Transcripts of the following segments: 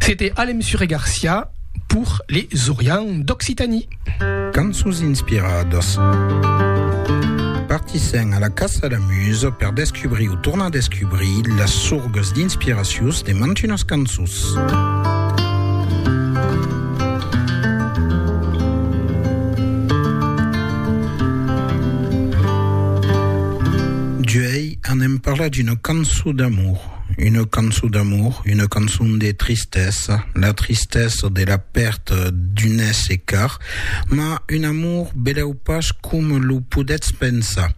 C'était Alem Sure Garcia pour les Orians d'Occitanie. Cançons inspiradas. Partissèm a la caça a la muse per descubrir o tornar descubrir las sorgas d'inspiracions de mantunas cançons. D'uèi anem parlar d'una cançon d'amor. Una cançon d'amor, una cançon de tristesa, la tristesa de la pèrta d'un èsser car, mas un amor belèu pas coma lo podètz pensar.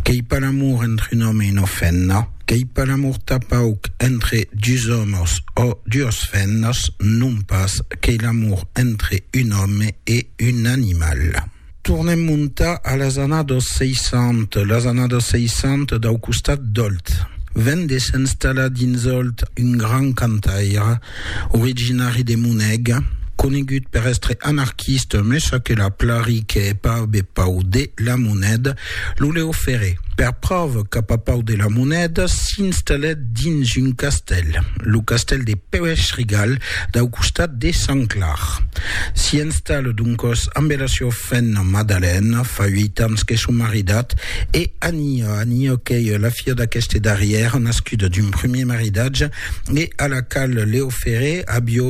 Qu'ei pas l'amor entre un òme e una femna, qu'ei pas l'amor tapauc entre dus òmes ò duas femnas, non pas, qu'ei l'amor entre un òme e un animal. Tornem montar a las annados 60, las annados 60 dau costat d'Òlt. Ven de s'enstallar dins Òlt un grand cantaire, originari de Moneg, conegut per èstre anarquista, mes aquela plari qu'è pas be pau de la moneda, Lo Leo Ferré, per pròva cap a Pau de la Monèda, s'installèt dins un castèl, lo castèl de Pèuèch-Rigal, dau costat de Sant Clar. S'i installa doncòs ambe la siua femna Madalèna, fa uèit ans que son maridat, e Ania, Ania qu'ei la filha d'aqueste darrièr, nascuda d'un primièr maridatge, e a la qual Leo Ferré avió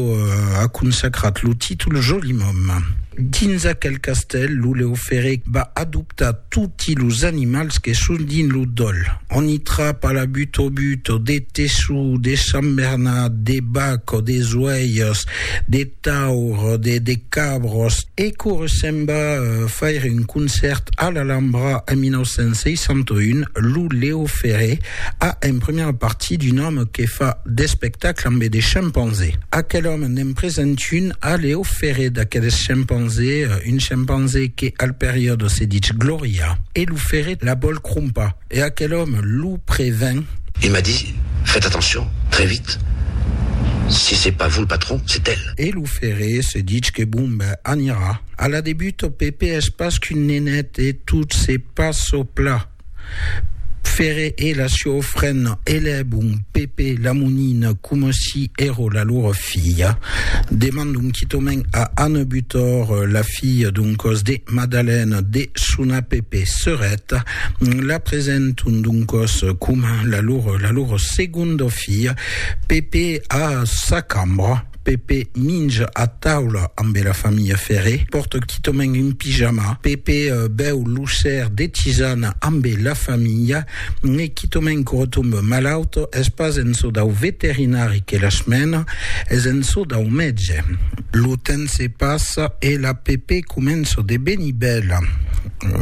a consacrat lo títol Joli Mòme. Dins aquel castèl, lo Leo Ferré va adoptar toti los animals que son dins lo dòl. On i trapa la butobuto, de teçu, de sambernat, de bac o de zoèirs, de. taur de de cabros. E quora se'n va faire un concèrt a l'Alhambra en 1961, lo Leo Ferré a en primièra partie d'un òme que fa d'espectacle ambe de chimpanzé. Aquel òme n'en present un a Leo Ferré d'aqueles chimpanzé, un chimpanzé que al periòde se ditz Gloria e lo Ferré la vòl crompar. E aquel òme lo prevèn. E m'a dit, Fètz atencion, très vite, si c'est pas vous le patron, c'est elle. E lo ferré se ditz que bon ben anirà. A la debut ò Pèpe es pas qu'un nenet e tot se passa au plat. Ferré e la siò frena elèbon Pèpe la monina coma si èra la lora filha. Demandon quitament a Anne Butor, la filha d'un còs de Madalène, de sonar Pèpe serèt. La presenton doncòs coma la lor, la lor segonda filha. Pepe a sa cambra. Pepe minja a taula ambe la familha Ferré. Pòrta quitament un pijama. Pepe bèu lo ser de tisana ambe la familha. E quitament que retombe malaut. Es pas en çò dau veterinari que las mena, es en çò dau mètge. Lo temps se passa e la Pepe comença de venir bèla.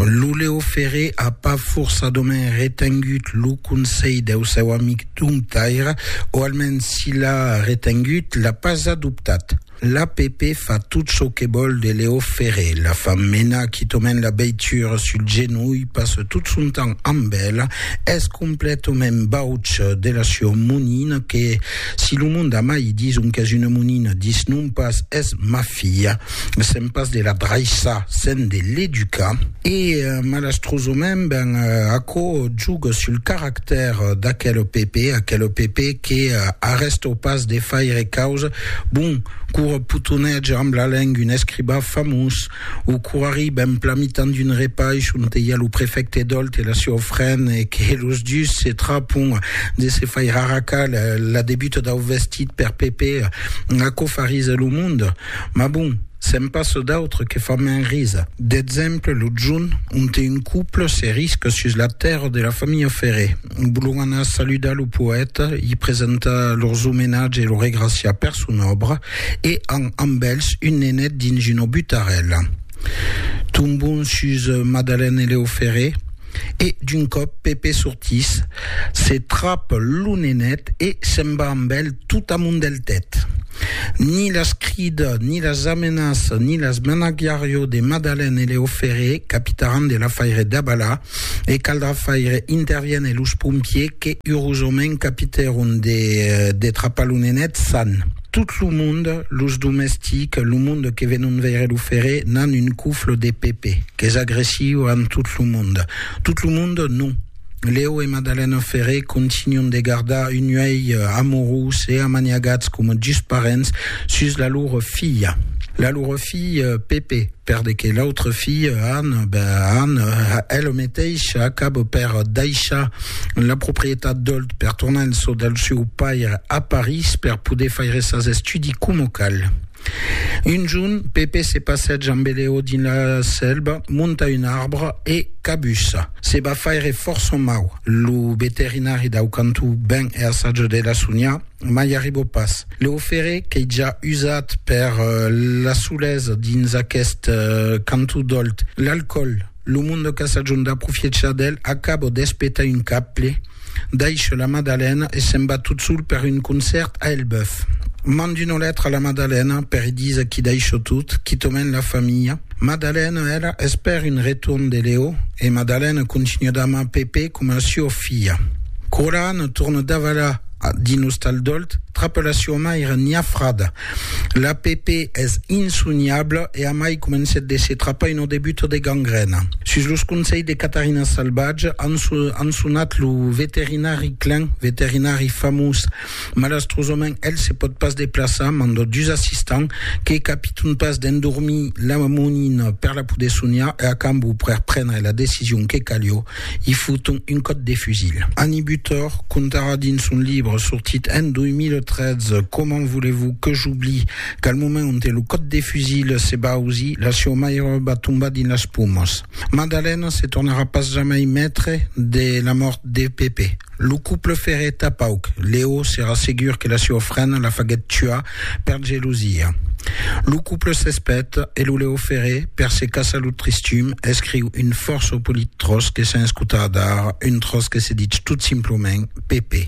Lo Leo Ferré a pas forçadament retengut lo conselh deu seu amic Domptaire, o almens si l'a retengut, l'a pas adoptat. L'APP fa tot çò que vòl de Leo Ferré, la fa menar quitament la veitura sul genolh, passa tot son temps amb ela, es completament bauç de la sua monina que, si lo monde a mai dison qu'es una monina, disnon pas, es ma filha. sèm pas de la draissar, sèm de l'educar. E malastrosament, ben, aquò juga sul caractèr d'aquel PP, aquel PP que arrèsta pas de faire causa, bon, quora potonètge amb la lenga un escribà famós, o quora arriba en plan mitan d'un repaish onte i a lo prefècte Dolt e la siá ofrena e que los dus se trapon de se faire arracar la debuta dau vestit per PP, aquò farise lo monde. Mas bon, se'n passa d'autres que fan mens risa. D'exemple, lo junh, onte un couple se risca sus la tèrra de la familha Ferré. Volon anar saludar lo poèta, li presentar lors omenatge e lo regraciar per son òbra e an amb elhs un nenet dins una butarèla. Tombon sus Madalène e Leo Ferré. E d'un còp Pepe sortís, se trap lo nenet e se'n va amb el tot amont del tèt. Ni las crida, ni las amenaça, ni las menagiarió de Madalen e Leo Ferré capitaràn de l'afaire dabalà e caldrà faire interviene los pompiers que urosament capitèron de trapar lo nenet san. Tot lo monde, los domestics, lo monde que venon veire lo ferre, n'an un cufle de Pepe, qu'es agressiu amb tot lo monde. Tot lo monde, non. Leo e Madalena Ferre continuen de gardar un uèlh amorós e amaniagats coma dus parents sus la lor filha. La lor filha, Pepe. Per de que l'autre fille, Anne, ben Anne, elle meteisha acabo per daishar la proprietat d'Olt per tornar en çò del seu paire a Paris per poder faire sas estudi como cal. Un jorn, Pepe se passètja amb Eleo dins la selva, monta un arbre e cabussa. Se va faire fòrça mau. Lo veterinari dau cantó ven e assaja de la sonhar. Ma i arribo pas. Lo ferré qu'ei ja usat per l'assolés dins aqueste canto dolt. L'alcòl, lo monde qu'a sajon d'aprofiechar d'el, acabo d'espetar un caple, daisho la madalena e se'n va tot sol per un concèrt a Elbeuf. Mand una letra a la madalena per i díser qu'i daisho tot, quitament la familha. Madalena, ela, espèr un retorn de Leo e madalena continua d'amar Pepé coma a sua filha. Quora Anna torna davalar dins Ostal Dolt, trapa la siua maire Nia Frada. La Pepe es insoniabla e amai comencèt de se trapar una debuta de gangrèna. Sus los conselhs de Catarina Salvatge, an sonat lo veterinari Klein, veterinari famós. Malastrosament, el se pòt pas deplaçar, manda dus assistants, que capiton pas d'endormir la monina per la poder soniar e a cambó per prendre la decision que calió, i foton un còp de fusil. Annie Butor contarà dins son libre sortit en 2013 Comment voulez-vous que j'oublie qu'al moment onte lo còp de fusil se va ausir, la sieu maire va tombar dins las pomas. Madalena se tornarà pas jamai maitre de la mòrt de Pepe. Lo couple ferèt tà pauc. Leo s'èra segur que la sua frena la faguèt tuar per gelosia. Lo couple s'espèt e lo Leo Ferré, per se caçar lo tristum, escriu un fòrça polit tròç que sèn escotar d'ara, un tròç que se ditz tot simploment Pepe.